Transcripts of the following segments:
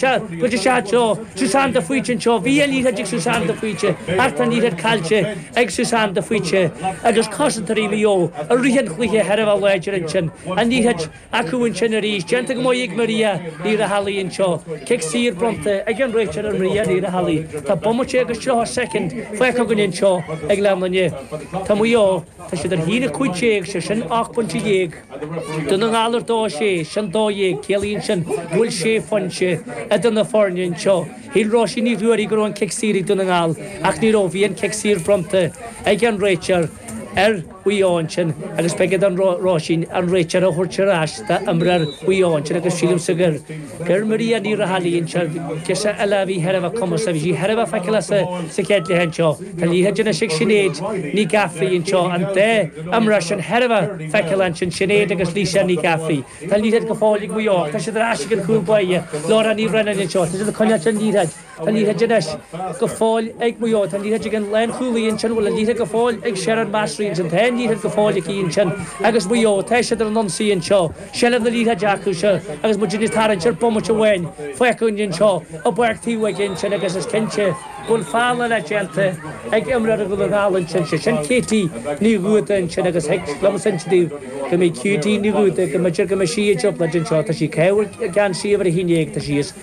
isteach i dtreo Susan de Faoite anseo. Bhí an liathróid ag Susan de Faoite ach tá an liathróid caillte ag Susan de Faoite agus cosantóirí Mhaigh Eo i rith an chluiche thar a bheith láidir ansin. An liathróid acu ansin arís, déanta go maith ag Maria Ní Raghallaigh anseo. Cic saor bronnta ag an réiteoir ar Mharia Ní Raghallaigh. Tá bomaite agus tríocha soicind fágtha againn anseo ag leath linne. Tá Maigh Eo, tá siad ar a haon a cúig déag, sé sin ocht bpointe dhéag. Dún na nGall ar dó sé, sin dó dhéag. Ciallaíonn sin go bhfuil sé phointe idir na foirne anseo. Shíl Róisín Ní Ruairí go raibh an cic saor ag Dún na nGall ach ní raibh. Bhí an cic saor bronnta ag an réiteoir ar Mhaigh Eo ansin agus beidh ar Róisín an réiteoir a thabhairt ar ais d'imreoir Mhaigh Eo ansin agus sílimse gur gur Maria Ní Raghallaigh, anseo, girseach eile a bhí thar a bheith cumasach agus bhí thar a bheith feiceálach sa chéad leath anseo, tá an liathróid anois ag Sinéad Ní Ghafraidh anseo, an dá imreoir sin thar a bheith feiceálach ansin, Sinéad agus Lisa Ní Ghafraidh. Tá an liathróid go fóill ag Maigh Eo ach tá siad ar ais ag an chúl báire, Laura Ní Bhraonáin anseo, tá siad ag coinneáilt an liathróid. Tá an liathróid go fóill ag Maigh Eo, tá an liathróid ag an lánchúlaí ansin, bhfuil an liathróid go fóill ag Sherin El Massry ansin, tá an liathróid go fóill aici ansin agus Maigh Eo, tá siad ar an ionsaí anseo, seilbh na liathróide acu anseo agus muid anois ag tarraingt ar bomaite amháin fágtha anseo i bpáirc taobh aige ansin agus is cinnte go bhfuil feall eile déanta ag imreoir Dhún na nGall ansin, sé sin Katie Ní Dhúda ansin agus thig liomsa insint daoibh go mbeidh Katie Ní Dhúda, go mb'fheidir go mbeidh sí i dtrioblóid anseo, tá sí ag caitheamh geansaí uimhir a haon dhéag, tá sí, is.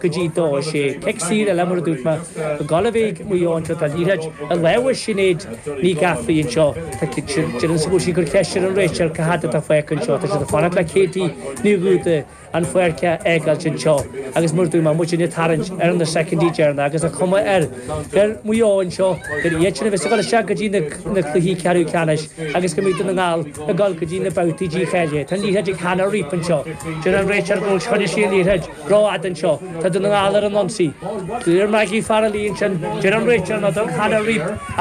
go dtí dó is é cic saor a leanbh ar a dtugtar mar go gcáilibhígh Maigh Eo anseo tá an liathróid i lámha Shinéad Ní Ghafraidh anseo. Tá Ciarán ins an bhfuil sí ag cur ceist ar an réiteoir cá fhad atá fágtha anseo tá siad ag fanacht le Katie Ní Dhúda an pháirc a fhágáilt anseo agus mar a dúirt mé muidne ag tarraingt ar na soicindí deireanach agus an chuma ar ar Mhaigh Eo anseo gur iad sin a bheas ag dul isteach go dtí na na cluichí ceathrú ceannais agus go mbeidh Dún na nGall ag dul go dtí na babhtaí dícháilithe tá an liathróid ag Hannah Reap anseo. Deir an réiteoir go bhfuil Sinéad Ní Dhúda Rófhada anseo, tá Dún na nGall ar an ionsaí. Deir Maggie Farrelly ansin, deir an réiteoir no, tugann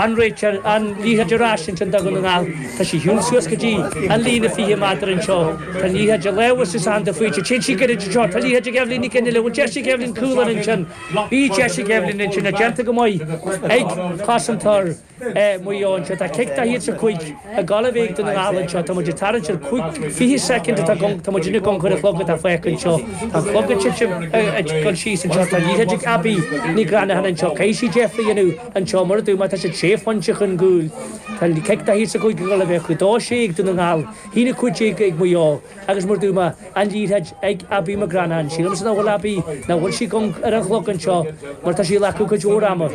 an réiteoir an liathróid ar ais ansin do Dhún na nGall. Tá sí ag siúl suas go dtí an líne 20 méadar anseo. Tá an liathróid i lámha Susan de Faoite. Téann sí gairid anseo. Tá an liathróid ag Eibhlín Nic Fhionnaile. Bhí deis ag Eibhlín cúl ar ansin. Bhí deis ag Eibhlín ansin. Tá déanta go maith ag cosantóir. Maigh Eo anseo. Tá cic daichead is a cúig ag gabháil chuig Dún na nGall anseo. Tá muid ag tarraingt ar chúig, fiche soicind atá againn, tá muid ina gconair an chlog atá fágtha anseo. Tá an clog ag titim, ag dul síos anseo. Tá an liathróid ag Abby Ní Ghreanacháin anseo. Caithfidh sí deifre a dhéanamh anseo, mar a dúirt mé tá siad sé phointe chun cúil. Tá cic daichead is a cúig ag gabháil chuig. Dó sé ag Dún na nGall, haon a cúig déag ag Maigh Eo agus mar a dúirt mé an liathróid ag Abby McGranachan. Sílimse nach bhfuil Abby, nach bhfuil sí ar an chlog anseo mar tá sí ag glacadh cuid mhór ama.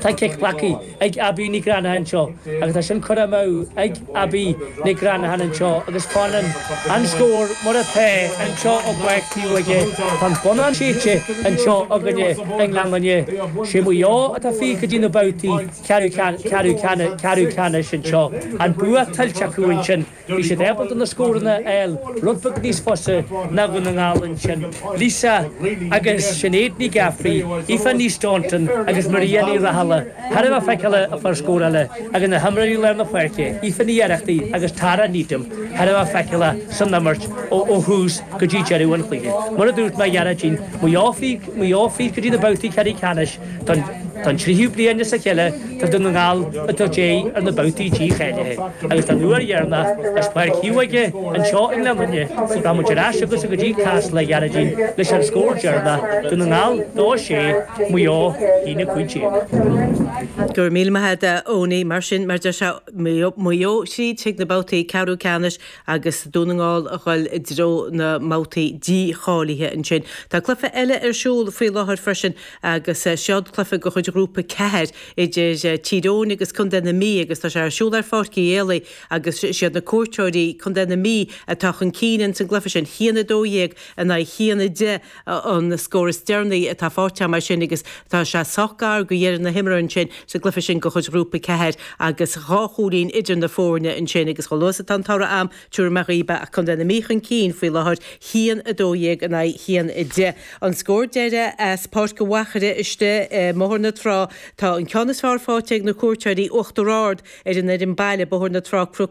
Tá cic glactha ag Abbie Nic Reannacháin anseo agus tá sin curtha amú ag Abbie Nic Reannacháin anseo agus fanann an scór mar atá anseo i bPáirc Taobhóige. Tá an bonnán séidte anseo againne i nGleann Fhinne. Sé Maigh Eo atá fríd go dtí na babhtaí ceathrú ceannais anseo. An bua tuillte acu ansin. Bhí siad ábalta na scóranna a fháil, rud beag níos fusa ná Dún na nGall ansin, Lisa agus Sinéad Nic Eafartaigh, Aoife Ní Staunton agus Maria Ní Raghallaigh, thar a bheith feiceálach a chuir scór eile agus na himreoirí lár na páirce, Aoife Ní Oireachtaigh agus Tara Needham, thar a bheith feiceálach san imirt ó thús go dtí deireadh an chluiche. Mar a dúirt mé, a Ghearóidín, Maigh Eo fríd go dtí na babhtaí ceathrú ceannais, Don tríú bliain as a chéile tá Dún na nGall ag tabhairt aghaidh ar na babhtaí dícháilithe agus don uair dheireanach as Páirc Taobhóige anseo i nGleann Fhinne rachaidh muid ar ais chugatsa go dtí Casla a Ghearóidín leis an scór deireanach, Dún na nGall 2 6, Maigh Eo 1 15. Go raibh míle maith agat a Eoiní. Mar sin, mar a deir sé, Maigh Eo thríd chuig na babhtaí ceathrú ceannais agus Dún na nGall a dhul i dtreo na mbabhtaí dícháilithe ansin. Tá cluife eile ar siúl faoi láthair freisin, agus seod cluife de chuid Ghrúpa 4 idir Tír Eoghain agus Contae na Mí agus tá sé ar siúl ar Pháirc Uí Éalaigh agus siad na cuairteoirí, Contae na Mí, atá chun cinn in san gcluife sin. 1 12 in aghaidh 1 10 an scór is deireanaí atá faighte amach mar sin agus tá sé sách gar do dheireadh na himeartha ansin sa gcluife sin de chuid Ghrúpa 4 agus dhá chúilín idir na foirne ansin agus chomh luath is atá an toradh agam tabharfaidh mé dhaoibh é ach Contae na Mí chun cinn faoi láthair, 1 12 in aghaidh 1 10. An scór deiridh as Páirc an Mhachaire istigh i mBóthar na Trá, tá an ceann is fearr faighte ag na cuairteoirí, Uachtar Ard ar an fhoireann baile, Bóthar na Trá-Cnoc